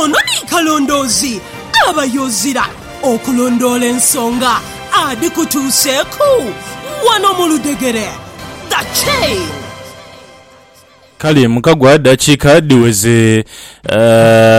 Ono ni kalondoozi aba y'ozira okulondoola ensonga adhikutuuseeku wano mu ludhegere. The Chain. Kale mukagwa dakiika dhiweze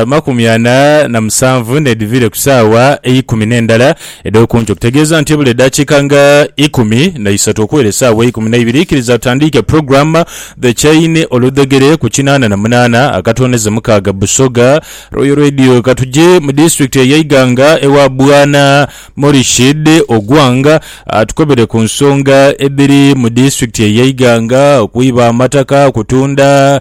amakumi ana na musanvu n'edhiviire ku saawa eikumi n'endala edh'oku nkyo, okutegeeza nti ebula eddakiika nga ikumi na isatu okuwera esaawa eikumi na ibiri, ikiriza tutandiike pulogulaamu. The Chaine oludhegere ku kinaana na munaana akatondeze mukaaga Busoga Royal Radio Katuje mu disitulikiti eye Iganga ewa Bwana Morishid Ogwang atukobere ku nsonga edhiri mu disitulikiti eye Iganga okwiba amataka, okutunda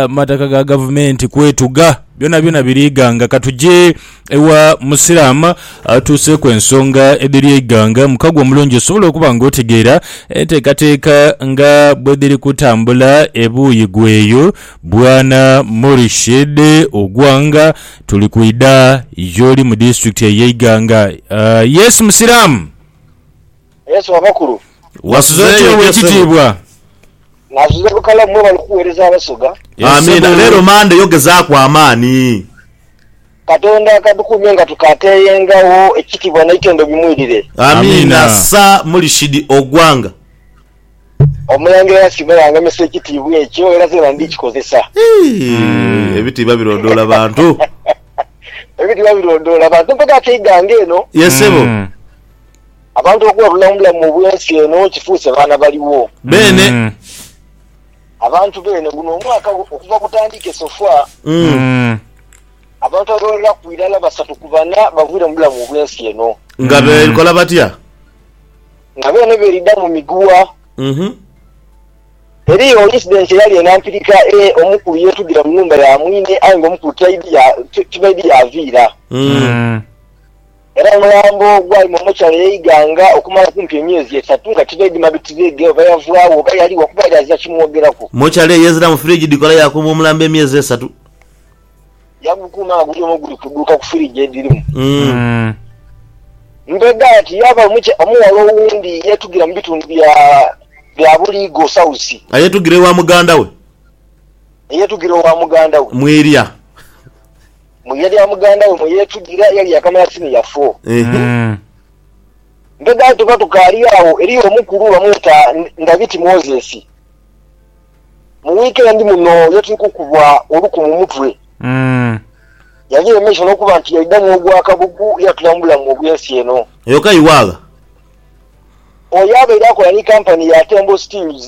amataka ga gavumenti, kwetuga byona byona biri Iganga Katuje Ewa Musiraama atuuseeku ensonga edhiri eighanga, mukago omulungi osobola okuba nga otegeera enteekateeka nga bwedhiri kutambula ebuuyi gweeyo. Bwana Murished Ogwanga, tuli kwidha y'oli mu disitulikiti ey'eighanga. Yes Musiramu. Yesu abakulu. Wasuze otya owekitiibwa? Nasuze bukalamu mwebale okuwereza abasoga. Amiina leero Monday yo gezaaku amaani. Katonda akatukuumye nga tukateeyengagho ekitibwa neitendo bimwidire. Amiina sir Mulishidi Ogwanga. Omulangira yasiima yangemesa ekitiibwa ekyo era zena ndikikozesa. Eeh ebitiibwa birondoola bantu. Ebitiibwa birondoola bantu mpaka keigange eno. Yes sebo. Abantu okuba bulamubulamu mu bw'ensi eno kifuuse baana baligho. Beene. Abantu beene guno omwaka okuva gutandike so far, abantu abawereraku irala basatu ku bana baviire mu bulamu mu bw'ensi eno. Nga bekola batya? Nga beene beridha mu miguwa. Eriyo incident eyali eno ampirika e omukulu yetudhira mu nhumba ya mwine aye nga omukulu tibaidhi yaviira. Era omulambo gwali mu mochari ey'e Iganga okumala kumpi emyezi esatu nga tibaidhima bitireege oba yavwagho oba yaligho kuba yali azira kimwogeraku. Mochari ey'eziramu firigi dhikola yakuuma omulambo emyezi esatu. Yagukuuma nga guli omwo guli kudhuuka ku firigi edhirimu. Umm. Mbega ati yaaba omuky omughala owundi yeetugira mu bitundu bya bya Buligo South. Ayeetugira ewa muganda we. Eyeetugira owa muganda we. Mwirya. mu ye lya muganda we mwe yeetugira eyali yaakamala siniya foo. Ehe. Mm. Mbega tuba tukaali agho, eriyo omukulu bamweta Ndabiti Moses. Mu wiikendi muno ye tuli kukubwa oluku mu mutwe. Mm. Yali yemesha n'okuba nti yaidhamu ogwa kabugu ye atula mu bulamu obw'ensi eno. Eyo ka iwaagha. Oyo abaire akola ni kampani ya Tembo Steels.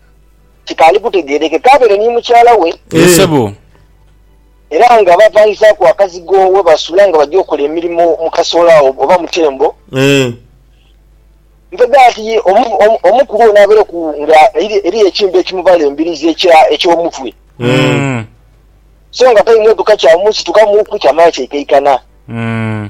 kikaali kutegeerekeka abeere ni mukyala we. Yee Eh. sebo. Era nga baapangizaaku akazigo we basula nga baja okola emirimo mu kasoola agho oba mu tembo. Eh. Mpegha ati ye omu, omu, omu ku bo n'abeereku nga eri- eriyo ekintu ekimubala embirizi ekya, eky'omutwe, Mm. so nga taimwetuka kyamusitukamuuku kyamala kyaikaikana. Mm.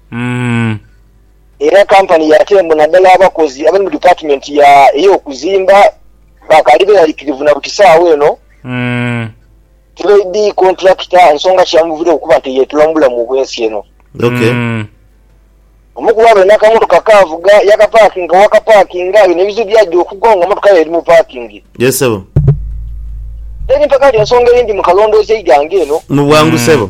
Umm. Era kampani ya Tembo naddala abakozi abali mu dipatimenti ya ey'okuzimba bakaali beralikirivu na buti saawa eno Umm. tibaidhi kontulakita nsonga ki yamuviireku okuba nti eyeetula mu bulamu obw'ensi eno. Ok. Umm. Omu ku bo abaire n'akamotoka akaavuga yaakapaakinga waakapaakinga ayo n'ebizibu byagya okugwawo nga mmotoka ye eri mu paakingi. Yes sebo. Teri mpaka nti ensonga eyindi mu kalondoozi eigange eno. Mu bwangu Umm. sebo.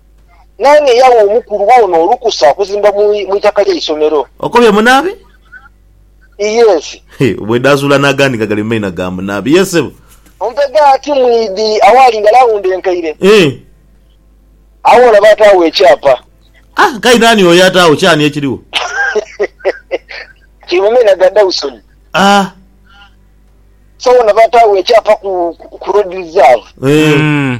Naani eyawa omukulu ono olukusa okuzimba mu mu itaka ly'eisomero? Okobye munaabi? Iyensi. He, bwedaazuula n'agandi nga gali mu maina ga munaabi. Ye, ssebo. Ompe ghati mu idi awaali nga laawundi enkaire. Hee. Agho olaba ataagho ekyapa. Ah, nkaye naani oyo ataagho ky'ani ekirigho? Kiri mu maina ga Dawson. Ah. So olaba ataagho ekyapa ku, ku, ku Road Reserve. Hee. Mm.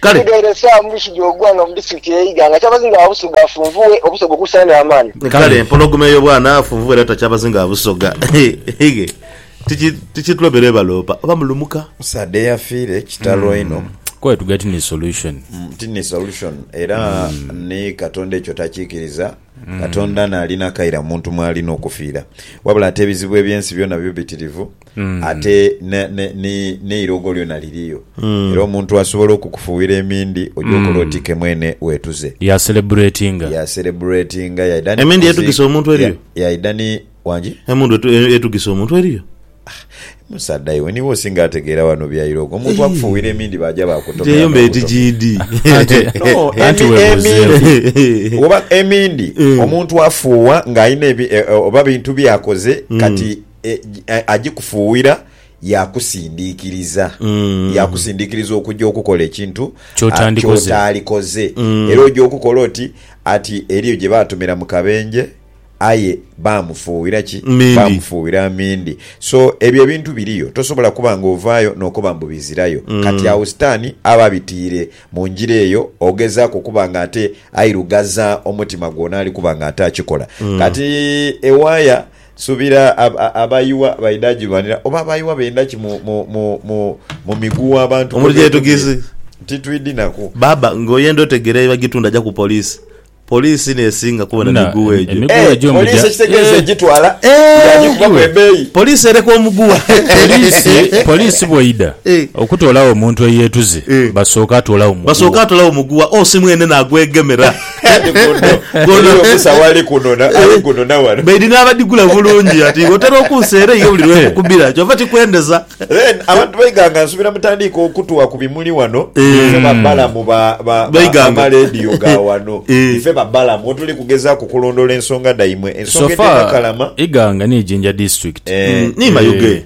kale Egaire esaa mu bisu gy'ogwanga mu disitulikiti y'e Iganga akyabazinga gha Busoga afunvughe obusoga okuusayo n'amaani. Kale empologoma eyo bwana afunvughe era takyabazinga gha Busoga hhige tiki tikitulobera ebaloopa oba mulumuka. Omusaadha eyafiire kitalo inho. Quite to get ni solution. Ti ni solution era ni Katonda ekyo takikiriza. Katonda n'alina akaire muntu mw'alina okufiira. Wabula ate ebizibu eby'ensi byona bibitirivu. ate ne- ne- ni- n'eirogo lyona liriyo era omuntu asobola okukufuuwira emindi oja okola oti ke mwene wetuze Ya celebratinga. ya celebratinga yaidha ni Emindi kuzi- yetugisa omuntu eriyo? ya- yaidha ni wangi Emundu etu- e- etugisa omuntu eriyo? musaadha iwe niwe osinga ategeera wano bya irogo omuntu akufuuwira emindi baja Eyo bakutomera mbe eti GD. No, Anti emi- webuzeewo. emindi oba emindi omuntu afuuwa ng'alina ebi- e- e- oba bintu byakoze kati e, e, agikufuuwira yakusindiikiriza Mm. yakusindiikiriza okujja okukola ekintu ah, Ky'otandikoze. ky'otaalikoze Mm. era ojja okukola oti ati eriyo gye baatumira mu kabenje aye baamufuuwira ki Mindi. baamufuuwira mindi so ebyo ebintu biriyo tosobola kuba nga ovaayo n'okoba mbu bizirayo Mm. kati awo sitaani aba abitiire mu njira eyo ogezaako okuba nga ate airugaza omutima gwona ali kuba nga ate akikola Mm. kati ewaaya Nsubira abayiwa baidha gilwanira oba abayiwa benda ki mu migugha abantu Omuntu gye yetugiizi. Titwidhi naku. Baaba nga oyenda otegere ebagitunda ja ku police. Police nesinga kubona Na, migugha em- egyo. emigugha Eh, gyo mugya- police ekitegeeza Eh. egitwala Eh, yaagikubaku iwe. ebeeyi. Police ereka omugugha. Poliisi poliisi bweidha Eh. okutoolawo omuntu eyeetuze Eh. basooka atoolawo mugugha. Basooka atolawo mugugha osi mwene nagwegemera. baidhi n'abadhigula bulungi ati otera okunsa era eyo buli lwekukubira kyova kikwendeza abantu baiganga nsubira mutandiike okutuwa ku bimuli wano ife babalamu b'amaleediyo ga wano ife babalamu wetuli kugezaaku kulondoola ensonga dhaimwe ensonga edh'e Nakalama Iganga ni Jinja District ni Mayuge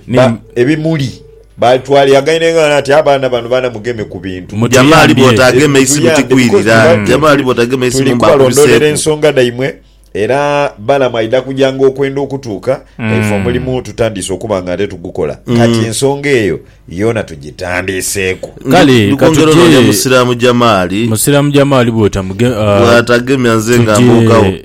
ebimuli Baitwale yagaine ng'ano ati, Abaana bano baana mugeme ku bintu. Mujama ali bwotagema eisimu tikwirira. Mujama ali bwotagema eisimu mba akubiseeku. Tuli kubalondoolera ensonga dhaimwe era Balaam aidha kuja ng'okwenda okutuuka nga ife omulimu tutandiise okuba nga ate tugukola. Kati ensonga eyo yoona tugitandiiseeku. Kale Ndi ka kwongera onoonia tugye. Musiraamu Jamaali. Musiraamu Jamaali bw'otamugema, Bw'atagemya nze nga mbuukawo. tugye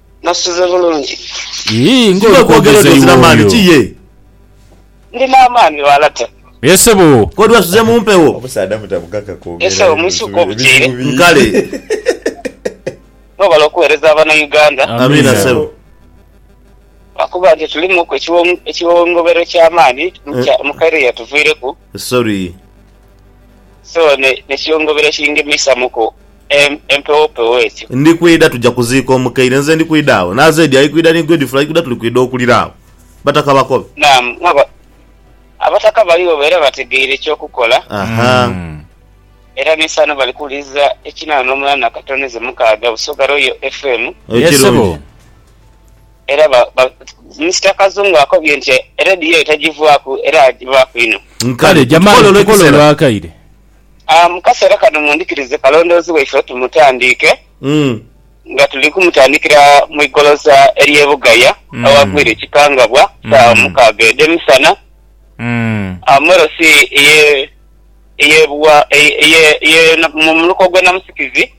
Nosuze bulungi. Yii nga oli kwogeza iwe oyo. Ndina amaani wala te. Ye ssebo. Kodi wasuze mumpewo. Omusaadha mutabugaga kwogera ebizibu bingi. Kale. Webale okuwereza abana Uganda. Amiina ssebo. Lwakuba nti tulimuku ekiwongobero ekyamaani mukaire eyatuviireku. Sorry. So nekyongobera ekingemesamu ku empewo pewo ekyo. Ndi kwidha tuja kuziika omukaire nze ndi kwidha agho na Zedi ali kwidha ni Godfrey ali kwidha tuli kwidha okulira agho bataka bakobe. Naam nga abataka baligho era bategeire ekyokukola. Aha. Era nesaano bali kuwuliriza ekinana nomulala nakatono ezo mukaaga Busoga Royal FM. Yes sebo. Ekirungi. Era ba, ba, Mister Kazungu akobye nti eredio eyo tagivwaku era agivaaku inho. Kale, jamani, tukole olwakaire. Aa, mu kaseera kano mundhikirize kalondoozi waife tumutandiike, nga tuli kumutandikira mu igoloza ery'e Bugaya awagwire ekikangabwa, saawa mukaaga edh'emisana. Aa, mu LC eye, eye Bugha, eye, eye, eye, mu muluka ogw'e Namusikizi.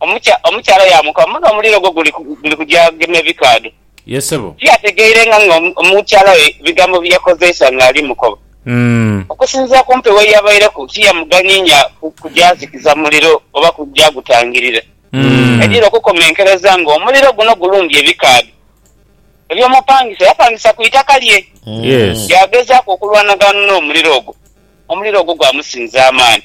Omukyala yaamukoba, Muno omuliro gwo guli kugya gema ebikaadho. Tiyategeirenga nga omukyala we bigambo bi yakozeisa ng'ali mukoba. Okusinziira ku mpewo ye yabaireku, tiyamuganiinya kugyazikiza muliro oba kugyagutangirira. Yaidhira okukomenkereza ng'omuliro guno gulumbye ebikaadho. Eby'omupangisa yapangisa ku itaka lye. Yaagezaaku okulwanagana n'omuliro ogwo. Omuliro ogwo gwamusinza amaani.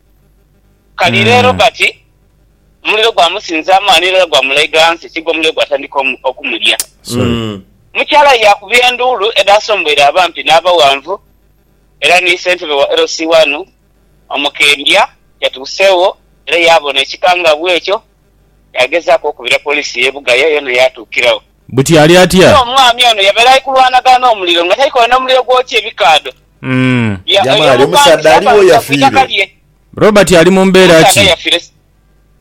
Kali re Robert, omuliro gwamusinzaamu ghano irala gwamulaigha ghansi ekiga omuliro gwatandika okumulya. Mukyala we yaakubira enduulu edhaasomboire abampi n'abaghanvu era ni ssentebe wa LC One omukendya yatuuseegho era yaabona ekikangabwa ekyo. Yaagezaaku okubira poliisi y'e Bugaya yoona yaatuukiragho. Buti ali atya? Aye omwami ono yabeera ali kulwanagana n'omuliro nga taikoine omuliro gwokya ebikaadho. Mm. Ya- Jamali, oyo omusaadha omupangi aliwo yapangisibwa ku yafiire? itaka lye. Robert ali mu mbeera Omusaadha ki? yafiire s-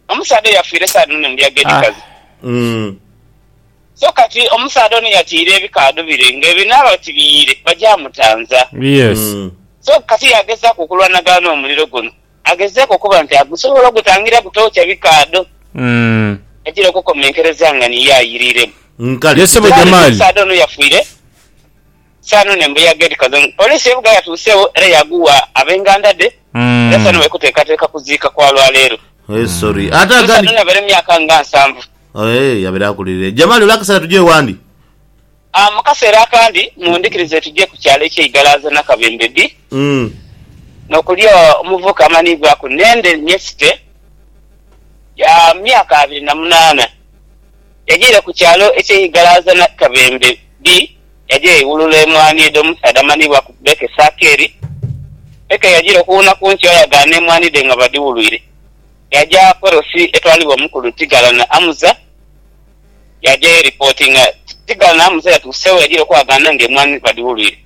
omusaadha eyafiire saadi muno ndi ag'edhi Ah. kazi. Mm. So kati omusaadha ono yatiire ebikaadho bire nga ebinaaba oti biyiire bagyamutanza. Yes. Mm. So kati yagezaku okulwanagana n'omuliro guno agezeeko okuba nti agusobola ogutangira gutookya bikaadho Mm. agira okukomenkereza nga niye ayiriremu. Nkale. Ye ssebo Kale Jamali. omusaadha ono yafiire Sano n'embuyaga edhikaze mu poliisi y'e Bugaga yatuuseegho era yaaghuwa ab'enganda dhe era Sano bali kuteekateeka kuziika kwa lwa leero. Ono Sano yabaire mu myaka nga nsanvu. Jamali, ole akaseera tuje wandi? Mu kaseera akandi mundhikirize tuje ku kyalo eky'e Igalaaza Nakabembe bii n'okuli omuvubuka amanhiibwaku Nende Nyesite ya myaka abiri na munaana yajaire ku kyalo eky'e Igalaaza Nakabembe bii. yaja yaiwulula emwaani edho mu musaadha amanhiibwa ku Becky Sakeri. Becky yajiira okuwuuna ku nkyo ayagaana emwaani dhe nga badhiwulwire. Yaja Perosi etwalibwa omukulu Tighala na Amuza, yaja yeripotinga. Tighala na Amuza yatuuse we yajiira okwagaana nga emwaani badhiwulwire.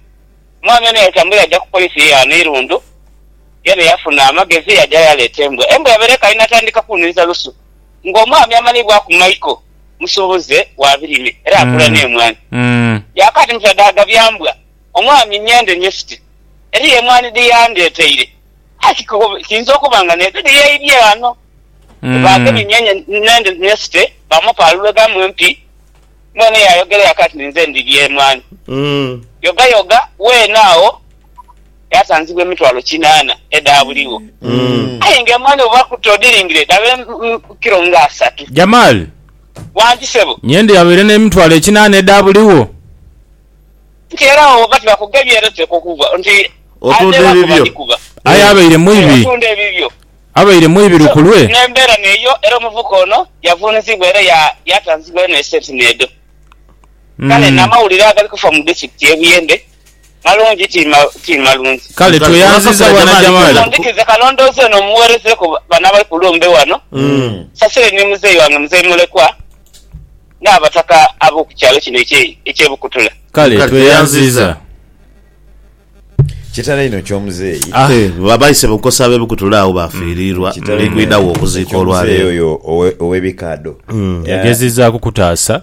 Omwami ono yatambula yaja ku police ye ghano Irundu, yene yafuna amagezi yaja yaleeta embwa. Embwa yabaire ekaali natandika kunhiriza lusu nga omwami amanhiibwaku Michael. musuubuze wa birime era akula n'emwaani. Yaakaadi mu byadaaga bya mbwa, omwaami ng'ende nyesite eriyo emwaani dhe yandeeteire, aye kiinza okuba nga n'edho dhe yaidhie ghano. Baagemye nyenye n'ende nyesite, baamupaalula eghamu empi. Mwene yaayogera yaakaati, Ninze ndhi Lyemwaani. Yogayoga weene agho. Yaasanzibwa emitwalo kinaana edhaabuligho, aye nga emwaani oba ku toodhiringire dhaba kilo nga asatu. Jamal. Wangi sebo. Nyende yabaire n'emitwalo ekinaana edhaabuligho. Nti era awo bwebaba tibakugheebye era oteekwa okuva nti adheebwa kuba adhikuba. Aye abaire mwibi. Abaire mwibi lukulwe. N'embeera n'eyo era omuvubuka ono yavuunizibwa era yaatanzibwa eno esenti n'edho. Kale n'amawulire agali kufa mu disitulikiti y'e Buyende Malungi ti ma, ti malungi. Kale tweyanziza bwana Jamali. Mundhikize kalondoozi ono mugherezeeku bano abali ku lumbe wano. Nsasire ni muzeeyi wange Muzeeyi Mulekwa n'abataka ab'oku kyalo kino ekye, eky'e Bukutula. Kale tweyanziza. Kitalo inho ky'omuzeeyi. Ah, ba baise bukosi ab'e Bukutula agho baafiiriirwa. Ndi kwidha wo okuziika olwaleero. Ky'omuzeeyi oyo owe, ow'ebikaadho. Yagezezaaku kutaasa.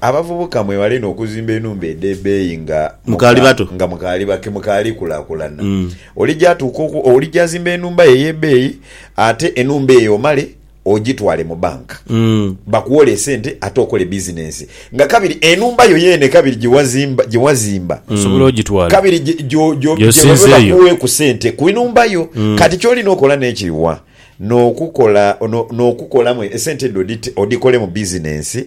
Abavubuka mwewale inho okuzimba enhumba edh'ebeeyi nga Mukaali bato. nga mukaali ba ke mukaali kulaakulana. Olija atuuka oku olija azimba enhumba yo ey'ebeeyi ate enhumba eyo omale ogitwale mu banka bakuwole esente ate okole bizinensi nga kabiri enhumba yo yeene kabiri gye wazimba gye wazimba Osobola ogitwala. kabiri gye gyo gyo gye Gy'osinza babe eyo. bakuweeku sente ku nhumba yo. Kati ky'olina okola n'ekiri wa? N'okukola no n'okukolamu esente edho odhite odhikolemu bizinensi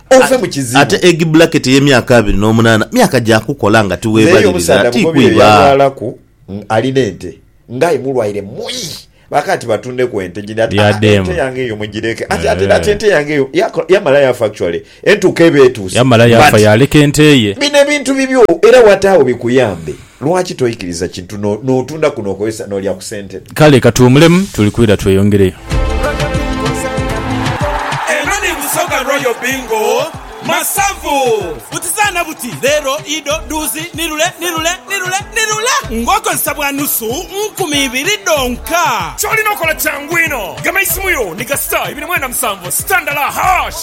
ove mu kizibu. Ate egi bullaketi ey'emyaka abiri n'omunaana myaka gya kukola nga N'eyo tiweebalirira, omusaadha ti bugobi oyo kwiba. yalwalaku ng' ali n'ente, nga aye mulwaire muyi. Baaka ati batundeku ente gindi ati, Aa, Yadeema. ente yange eyo mugireke. Ati, ate, ati Eeh. ente yange eyo yako- yamala yafa actually. Entuuko eba etuuse. Yamala yafa but yaleka ente ye. Bino ebintu bibyo era wata agho bikuyambe. Lwaki toikiriza kintu n'otunda ku n'okozesa n'olya ku sente dho? Kale katuwumulemu tuli kwira tweyongereyo. Royal Bingo zaana bingo. Eno ni Busoga Royal Bingo Masavu. Buti zaana buti, leero, ido, dhuuzi, ni lule, ni lule, ni lule, ni lule ng'okozesa bwa nusu nkumi ibiri dhonka. Ky'olina okola kyangu inho. Gema isimu yo ni ga star ibiri mwenda musanvu star ndala hash.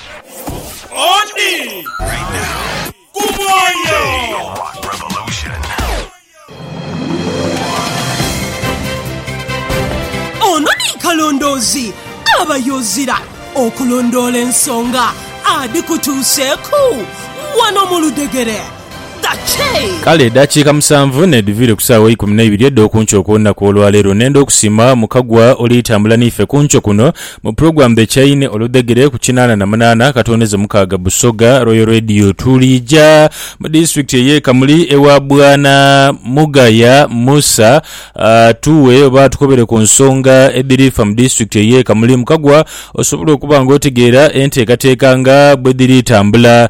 Oti ku mwoyo. Ono ni kalondoozi aba yoozira okulondoola ensonga adhikutuuseeku wano mu ludhegere. Kale edaakiika musanvu n'edhuviire ku saawa eikumi na ibiri edh'oku nkyo okw'olunaku olwaleero. Nenda okusiima Mukagwa oli tambula n'ife ku nkyo kuno mu Program The Chain oludhegere ku kinaana na munaana katondeze mukaaga Busoga Royal Radio. Tuliija mu disitulikiti ey'e Kamuli ewa Bwana Mugaya Musa atuughe oba atukobere ku nsonga edhiri fa mu disitulikiti ey'e Kamuli. Mukagwa osobola okuba ng'otegeera enteekateeka nga bwedhiri tambula.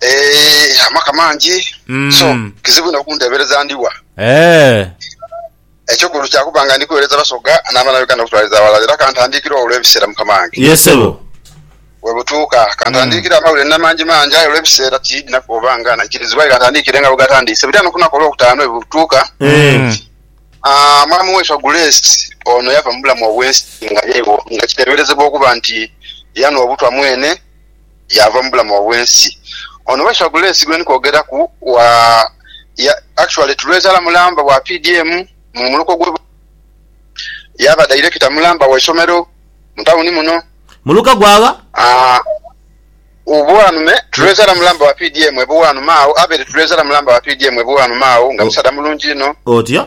Eeh amaka mangi so kizibu inho okundhebereza ndi wa? Eky'okulu kya kuba nga ndi kuweereza Basoga n'abaana Uganda okutwaliza aghalala era ka ntandikire ogho olw'ebiseera Mukama wange. We butuuka ka ntandikire amawulire n'amangimangi aye olw'ebiseera tiidina kuba nga naikirizibwa aye ka ntandikire nga bwe gatandiise. Buli ano ku lunaku olwokutaanu we butuuka Mwami waifo Grace ono yava mu bulamu obw'ensi nga yeewo nga kiteeberezebwa okuba nti yanhwa obutwa mwene. yaava mu bulamu obw'ensi. Ono Weswa Gulesi gwendi kwogeraku wa ya actually tulwezaala mulamba wa PDM mu muluka ogw'e Bukoba. Yaaba Director mulamba wa isomero mu tawuni muno. Muluka gwa gha? Aah Bwanume tulwezaala mulamba wa PDM e Bwanume agho. Abel tulwezaala mulamba wa PDM e Bwanume agho nga musaadha mulungi inho. Otya?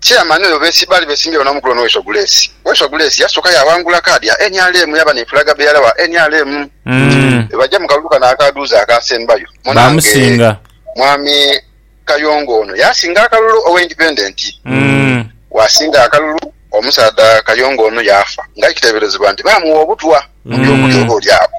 Chairman oyo besi baali besimbyewo n'omukulo ono Waiswa Gulesi. Waiswa Gulesi yasooka yaawangula kaadi ya nrm yaaba ni flag bearer wa nrm. Bwebajja mu kalulu kano akaaduuza akaasembayo, munange Baamusinga. Mwami Kayongo ono yaasinga akalulu owa Independent. Bwasinga akalulu, omusaadha Kayongo ono yaafa nga aye kiteeberezebwa nti baamuwa obutwa mu by'okulya oba oli agho.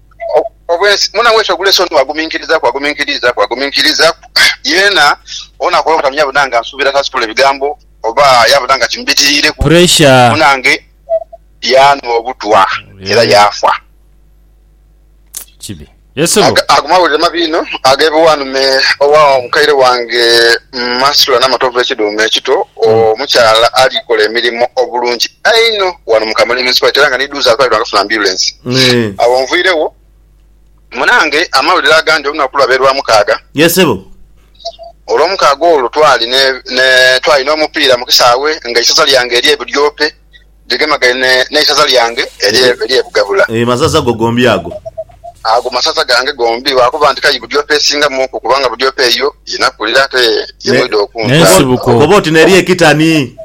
obwensi mwona wetu ogula esoni waguminkirizaku waguminkirizaku waguminkirizaku yeena ono akola obutamiiza yabona nga nsuubira tasitula ebigambo oba yabona nga kimubitiriireku Pressure. munange yaanhwa obutwa era yaafa. Kibi. Yesu lwo. Ago mawulire mabi inho agebiwanume owa mukaire wange Mu masula n'amatovu ekidhuume ekito, omukyala alikola emirimo obulungi einho wano mu Kamuli Municipality era nga ni Duuza atwalibwa nga afuna ambyulensi. Agho nviiregho munange amawulire agandi olunaku lwa be Lwamukaaga. Yes sebo. Olwomukaaga olwo twali ne, ne, twali n'omupiira mu kisaawe nga eisaza lyange erye Budyope, Gigemagaine n'eisaza lyange ery'e Bugabula. E masaza go gombi ago. Ago masaza gange gombi. Lwakuba nti k'ayi Budyope esingamuku, kubanga Budyope eyo ye nakulira ate ye mwidha okunzaala. Koba oti n'eri e Kitani.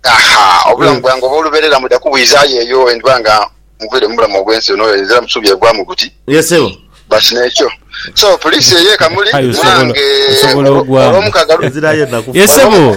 Aha! Obulamu bwange obw'olubeerera mwidha kubwizaayo eyo bwe ndiba nga nviire mu bulamu obw'ensi eno ezira busubi evaamu buti. Ye sebo. But n'ekyo. So, puliisi eyo e Kamuli, K'ayi osobola, osobola ogwamu. Olwomukaaga lu. Ezirayo enaku. Ye sebo.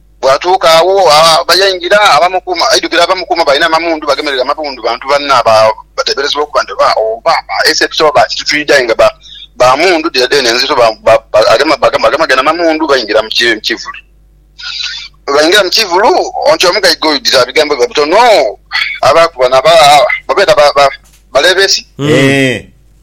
Bwatuuka agho yaingira, aidhukira abamukuuma balina amamundu bagemereire amamundu bantu banne abateeberezebwa okuba nti oba ba SFC oba ba kitutwidho aye nga ba mundu dhire dheene nzito. Baagema gene amamundu baingira mu kivulu. Bwebaingira mu kivulu nti omugaiga oyo dhira bigambo biba bitono abaaku bano abe beeta ba Leebesi.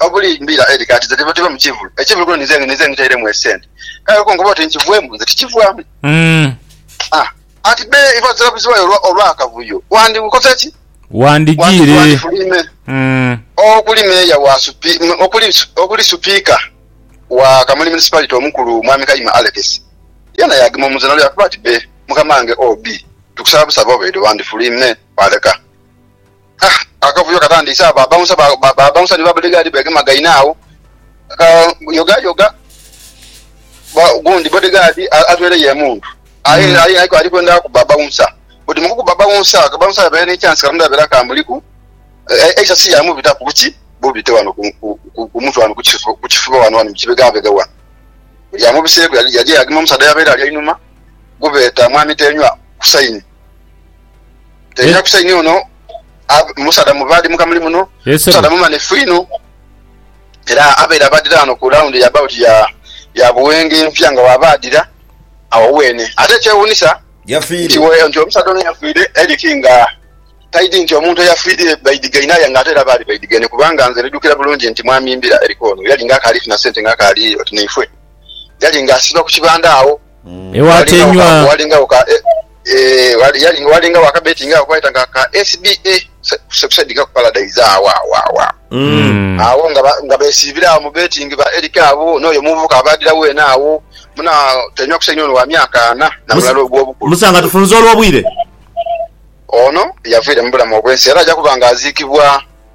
obuli mbira eri kati nze tive mu kivulu ekivulu kuno nize nize ngitairemu esente kale olwo kunkoba oti nkivwemu nze tikivwamu Mm. ah ati be iva zirabuzibayo olwa olwakavuyo wandikoze ki Wandi Wandigiire. wandifuluime Mm. okuli meeya wa supi m- okuli su- okuli supiika wa kamuli municipality omukulu mwami kayima alex yena yagema omuzira lwe yakuba ati be mukamange ob tukusaba busabi obeide wandifuluime waleka Akavuyo katandise agho ba bouncer ba bouncer ni ba bodyguard begemagaine agho ka yoga yoga ogundi bodyguard atweireyo emundu aye aye ali kwenda kuba bouncer buti mu kukuba bouncer ka bouncer kabeire ni chance katonda yabeire akamuliku eisa si ya mubitaku buki bubite ghano ku mutwe ghano ku kifuba ghano mu kibegabega ghano lya mubiseku yaja yagema omusaadha eyabeire ali einhuma gwe beta mwami Tenywa Hussaini. Tebya kusa inho ono musaadha mubaadhi muka muli muno. Musaadha mumanhifu inho era abaire abaadhira ghano ku laundhi ya bawuti ya Buwenge empya nga bw'abaadhira agho weene. Ate ekyewuunhisa nti omusaadha ono yafiire Eric nga taidhi nti omuntu eyafiire baidhigaine aye ng'ate era baali baidhigaine kubanga nze ndidhukira bulungi nti mwami mbira Eric ono yali ng'akaali funa sente ng'akaali oti naifwe. Yali ng'asiiba ku kibanda agho. Ewatenywa. Walingagho ka, eh, walingagho akabetingagho kebeta nga ka SBA, Succeed Cup Paradise, agho agho agho agho agho nga besiibira agho mu betingi, ba Eric abo, n'oyo omuvubuka abaadhira weena agho. Muna Tenywa kusainhe ono wa myaka ana, na mulala ogw'obukulu. Musa, nga tufunze olw'obwire. Ono yavaire mu bulamu obw'ensi era aja kuba nga aziikibwa.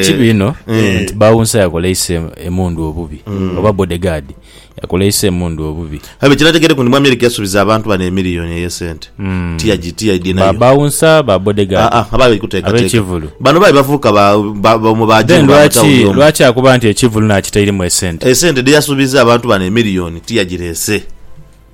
ekibi ino nti bawunsa yakoleisa em- emundu obubi oba bodegaadi yakoleisa emundu obubi abe kinategereku nti mwami eric yasubiza abantu bano emiliyoni eyesente tiyagi tiyadi Ba- nayo bawunsa ba Ah, bodegaadi ah, abaali kutekateeka. Ab'ekivulu. bano baali bavubuka ba- ba- ba- mu ba then jimu ba lwaki mutawuni omu. lwaki akuba nti ekivulu nakitairemu esente esente dheyasubiza abantu bano emiliyoni tiyagirese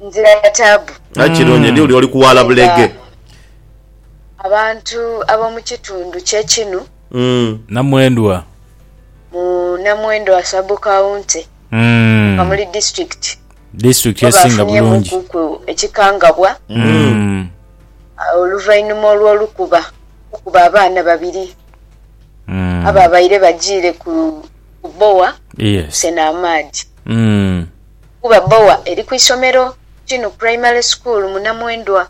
nzira ya taabu. Aye kirungi ni uli oli ku waala bulege. Abantu ab'omu kitundu kye kinu. Namwendwa. Mu Namwendwa Sub-County mu Kamuli District bo baafunyemuuku ekikangabwa oluvainhuma olw'olukuba okuba abaana babiri abaabaire bajiire ku bbowa okusena amaadhi. kuba boa eri ku isomero Kinu Primary School mu Namwendwa.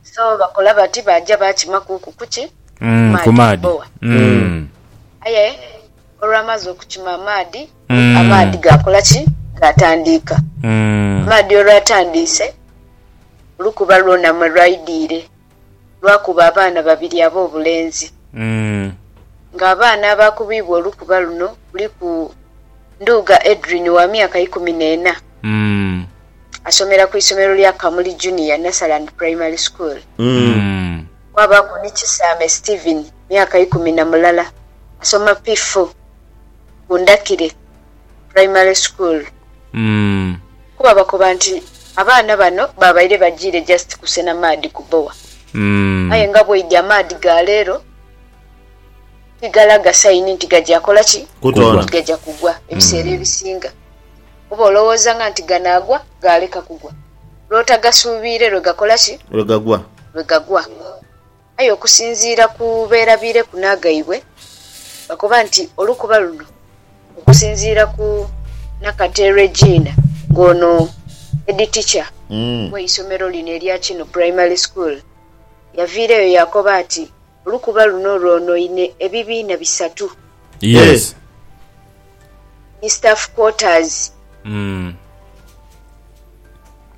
So bakola bati baaja baakimakuuku ku ki? Ku maadhi ku maadhi. boa. Aye olwamaze okukima amaadhi, amaadhi gaakola ki? Gaatandiika. Amaadhi olwatandiise, olukuba lwona mwe lwaidhiire. lwakuba abaana babiri ab'obulenzi nga abaana abaakubibwa olukuba luno kuliku Nduuga Edrine wa myaka ikumi n'ena asomera ku isomero lya Kamuli Junior Nursery and Primary School, kwabaaku ni Kisaame Steven myaka ikumi na mulala asoma P-four ku ndhakire. Primary School kuba bakoba nti abaana bano babaire bajiire just kusena maadhi ku bowa aye nga bwoidhi amaadhi ga leero tigalaga sayini nti gaja kola ki? Nti gaja kugwa. Ebiseera ebisinga oba olowoozanga nti ganaagwa gaaleka kugwa lwotagasuubiire lwegakola ki? Lwegagwa. Aye okusinziira ku beerabiireku n'agaibwe, bakoba nti olukuba luno okusinziira ku Nakate Regina ng'ono Headteacher w'eisomero lino erya Kino Primary School yaviireyo yaakoba ati olukuba luno lwonoine ebibiina bisatu. Yes. Eh. ni staff quarters Mm.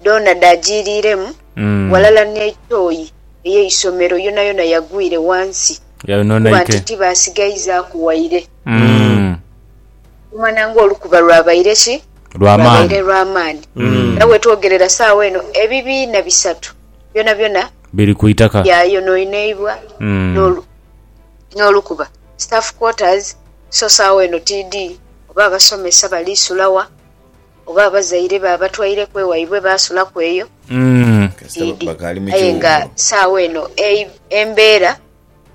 dhoona dhaajiiriiremu Mm. ghalala n'etooyi ey'eisomero yonayona yagwire ghansi kuba Yayononeike. nti tibaasigaizaaku waire. Mm. Omwana ng'olukuba lwabaire ki? Lwa maani. Lwabaire lwa maani. Mm. Era wetwogerera saawa eno ebibiina bisatu byonabyona Biri ku itaka. byayonoineibwa Mm. n'olu- n'olukuba. staff quarters so sawa eno tidhi oba abasomesa bali sula wa oba abazaire ba batwaireku ewaibwe basulaku eyo tidhi aye nga sawa eno embera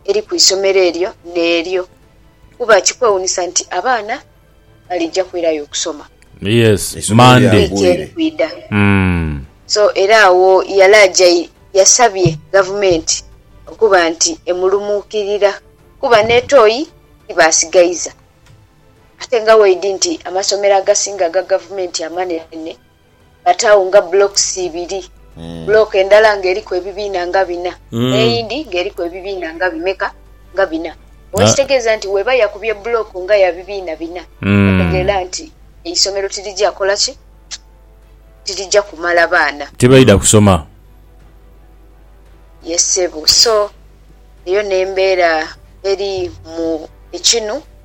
eri kwisomero eryo neryo kuba kikwewunisa nti abaana balija kwirayo okusoma. Yes Monday. Wiiki eri kwidha. So era agho yali ajaire yasabye Gavumenti okuba nti emulumuukirira kuba n'etoyi tibasigaiza ate nga weidhi nti amasomero agasinga aga Gavumenti amanene. But agho nga blocks ibiri. Block endala nga eriku ebibiina nga bina, n'eyindi nga eriku ebibiina nga bimeka? Nga bina. Oba ekitegeeza nti bw'eba yakubye block nga ya bibiina bina, otegeera nti eisomero tirija kola ki? Tirija kumala baana. Tibaidha kusoma. Yes ssebo. So eyo n'embeera eri mu ekinu.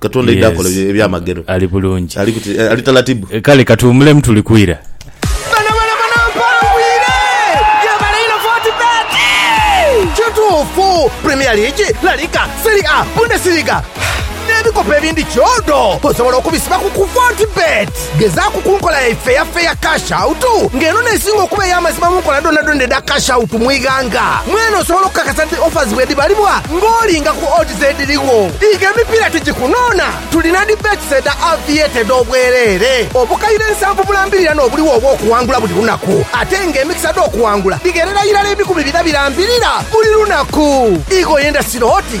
Katonda aidha akola Yes. ebyamagero. Ali bulungi. Ali kuti eh, ali talatibu. Eh, Kale katuwumulemu tuli kwira. Bano bano bano mpangwire gyebale ino foti beti kituufu premier league la liga seri a bundesliga n'ebikopo ebindi kyodo osobola okubisiba ku ku foti beti Gezaaku ku nkola yaife eya Fair Cash Out, nga eno n'esinga okuba ey'amazima mu nkola dhoonadhoona edha Cash Out mu ighanga. Mwene osobola okukakasa nti offers bwedhibalibwa ng'olinga ku odds edhirigho. Diiga emipiira tugikunoona. Tulina dhi bets edha Aviator edh'obwereere, obukaire nsanvu bulambirira n'obuligho obw'okuwangula buli lunaku, ate nga emikisa dh'okuwangula dhigherera irala ebikumi bina birambirira buli lunaku. Ighoyo endasiro oti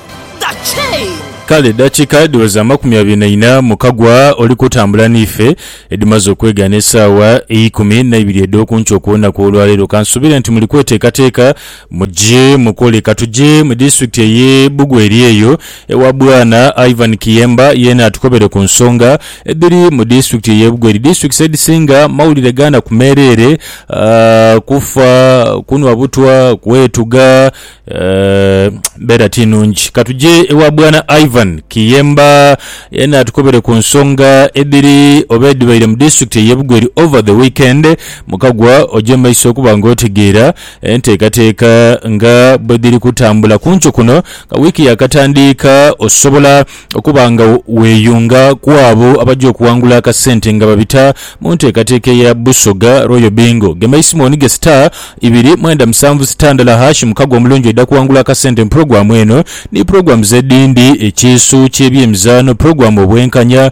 Kale eddakiika dhiweza amakumi abiri na ina mu kagwa oli kutambula n'ife, edhimaze okwegaana esaawa eikumi naibiri edh'oku nkya okw'olunaku olwaleero. Kansuubire nti muli kweteekateeka muje mukole. Katuje mu disitulikiti ey'e Bugweri eyo ewa Bwana Ivan Kiyemba, yeena atukobere ku nsonga edhiri mu disitulikiti ey'e Bugweri. Disitulikiti edhisinga mawulire gaana ku meereere, kufa, kunwa butwa, kwetuga Embeera ti nnungi. Ka tuje ewa Bwana Ivan Kiyemba yena atukobere ku nsonga edhiri oba edhibaire mu disitulikiti ey'e Bugweri over the weekend mu kagwa oje mu maiso okuba nga otegeera enteekateeka nga bwedhiri kutambula. Ku nkyo kuno nga wiiki yaakatandiika osobola. Okuba nga weeyunga ku abo abaja okuwangula akasente nga babita mu nteekateeka eya Busoga Royal Bingo, gema eisimooni ge star ibiri mwenda musanvu star ndala hash mukago omulungi oidha kuwangula akasente mu pulogulaamu eno ni pulogulaamuzi edhindi, Ekiisu ky'ebyemizaano, Pulogulaamu Obwenkanya,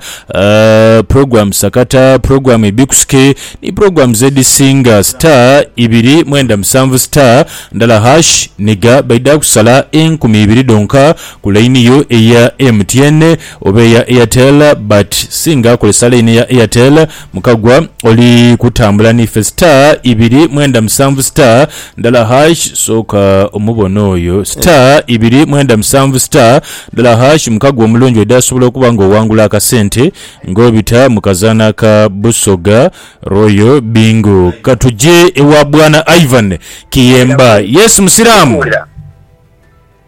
Pulogulaamu Sakata, Pulogulaamu Ebikusike ni pulogulaamuzi edhisinga star ibiri mwenda musanvu star ndala hash, Niga baidha kusala enkumi ibiri dhonka. ku line yo eya MTN oba eya Airtel but singa kozesa line eya Airtel mukagwa oli kutambula nife star ibiri mwenda musanvu star ndala harsh soka omubone oyo star ibiri mwenda musanvu star ndala harsh mukagwa omulungi odi asobola okuba nga owangula akasente nga obita mukazana ka Busoga Royal Bingo katuje ewa bwana Ivan kiyemba yes musiramu.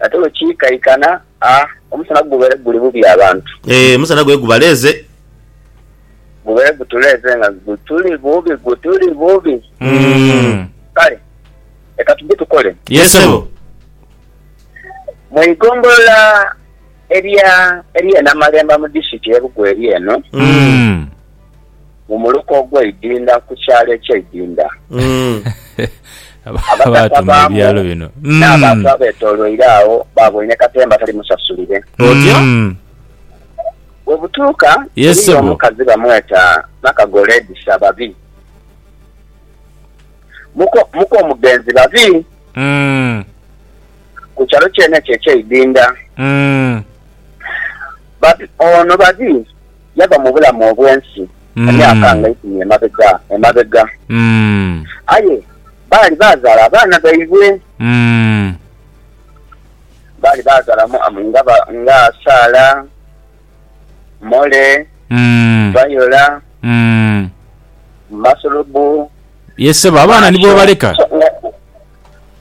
Ate bwe kiikaikana, a omusana gubeere guli bubi abantu. E, omusana gube gubaleeze. Gubeere gutuleeze nga gutuli bubi, gutuli bubi. Mm. Kale leka tuje tukole. Ye sebo. Mu igombolola erya erye Namalemba mu district ye Bugweri eno. Mm. mu muluka ogw'eidinda ku kyalo eky'eidinda. Abakaka baamu n'abantu abeetooloire agho baaboine katemba tali musasulire. Bwe butuuka, eriyo omukazi bamweta Nakagole Edisa Babi, muko muko omugenzi Babi, ku kyalo kyene ekyo eky'eidinda. Babi ono Babi. Yava mu bulamu obw'ensi emyaka nga eikumi emabega emabega. Aye baali baazaala abaana baibwe. Baali baazaala nga ba, nga Saala, Mole, Viola, Masulubu. Yee ssebo, abaana ni boobaleka?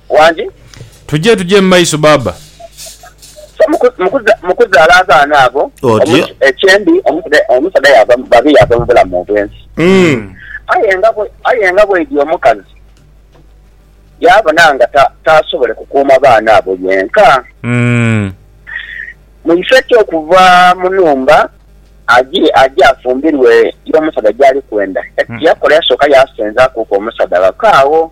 Wangi. Tuje tuje mu maiso baaba. So mu kuzaala abaana abo ekyendi omusaadha yaava babi yaava mu bulamu obw'ensi. Aye nga bweidhi omukazi yaabona nga taasobole kukuuma baana abo yenka, mu ifo eky'okuva mu nhumba aje afumbirwe y'omusaadha gy'ali kwenda, yakola yasooka yaasenzakuuku omusaadha ghaka agho.